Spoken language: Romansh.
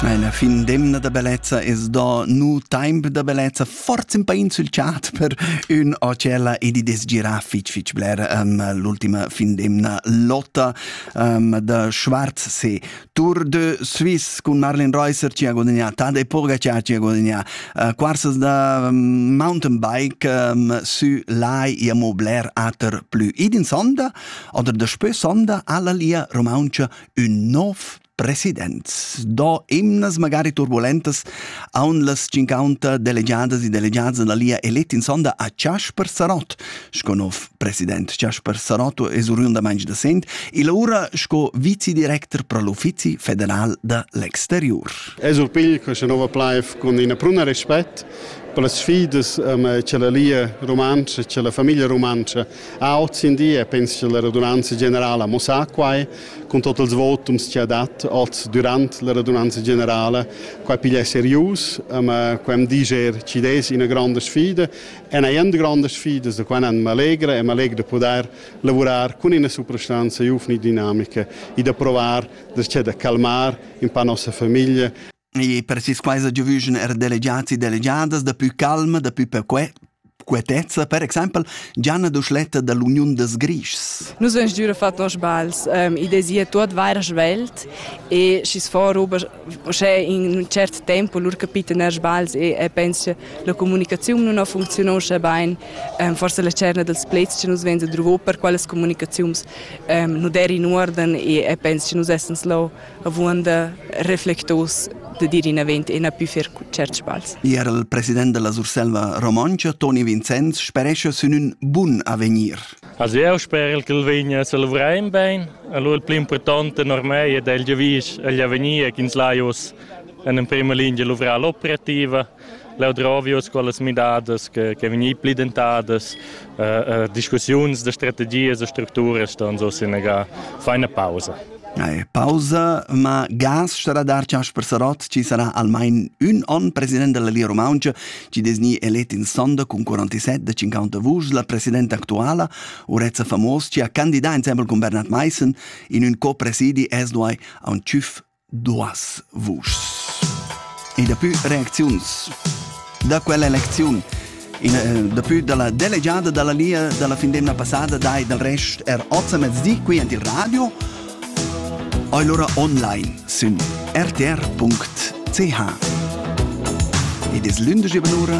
La fin d'emna da bellezza es do nu taimp da bellezza, forza ün pain sül chat per ün hotella ed i desgira fich fich bler um, l'ultima fin d'emna lotta um, da Schwarz se Tour de Suisse cun Marlene Reusser ci ha guadagnà Tade Pogacar ci ha guadagnà uh, quarsas da um, mountain bike um, sü lai ia mo bler ater plü id in sonda oder da spö sonda alla lia romauncha ün nov presidents do emnas magari turbulentas aun las cincaunta delegadas e delegadas da lia elet in sonda a Jasper Sarot sco nov president Jasper Sarot es oriundamaing da Sent e laura sco vicedirector pro l'Uffizi federal da l'exterior Es urpigl questa nova plaif cun ina pruna respect per las sfidas che la lia rumantscha, che la famiglia rumantscha ha oz in di e penso che la radunanza generala mo sa quai con tot els votums che ha dat oz durant la radunanza generala, quai piglia serius, ma quem diger ci des ina granda sfida. En ein granda sfida, da quai nan m'allegra e m'allegra da poder lavurar con ina soprastanza giuvni dinamica e da provar da c'è da calmar in pa nossa famiglia. E per sis quaisa giovüschen er delegiats e delegiadas da pü calma, da pü perque quietezza, per exempel Gianna Duschletta da l'Uniun des Grischs. Nus vegn giura fat nos bals. Um, I desia tuot vaira svelt e schi's fo roba uschè in un cert tempo lur capita ner sbals e, e pensa che la comunicaziun nun ha funziunà uschè bain. Um, forse la cerna dels plets che nus venza druvo per qualas comunicaziuns um, nu der in uorden e, e pensa che nus essens lo avuonda reflectos da dir inavant e na pü fer certs sbagls. Er il president della Surselva Romontscha, Toni Vincenz, sperescha sün ün bun avegnir. Also eu sper che el vegna a salvrar in bene. Allora il più importante per me è il giavisch agli avegnir che ins lai us in prima linea luvrar l'operativa Leu drovius quellas midadas che, che vegnir pli dentadas, eh, eh, discussiuns da strategias e structuras ston so senegar feina pausa. Ei, pausa, ma gas starà dar Casper Sarot, ci sarà almain un on president della Lia Romangia, ci desni elet in sonda con 47 de 50 vuschs la presidenta actuala, Urezza Famos, ci ha candidat insembel con Bernhard Meissen in un co-presidi esduai a un CIF duas vuschs. E daplü reacziuns da quella elecziun. In, eh, daplü dalla delegiada dalla Lia dalla fin d'emna passada dai dal rest er oz a mezdi qui ant il radio allora online sün rtr.ch. Ed es lündesch eben ura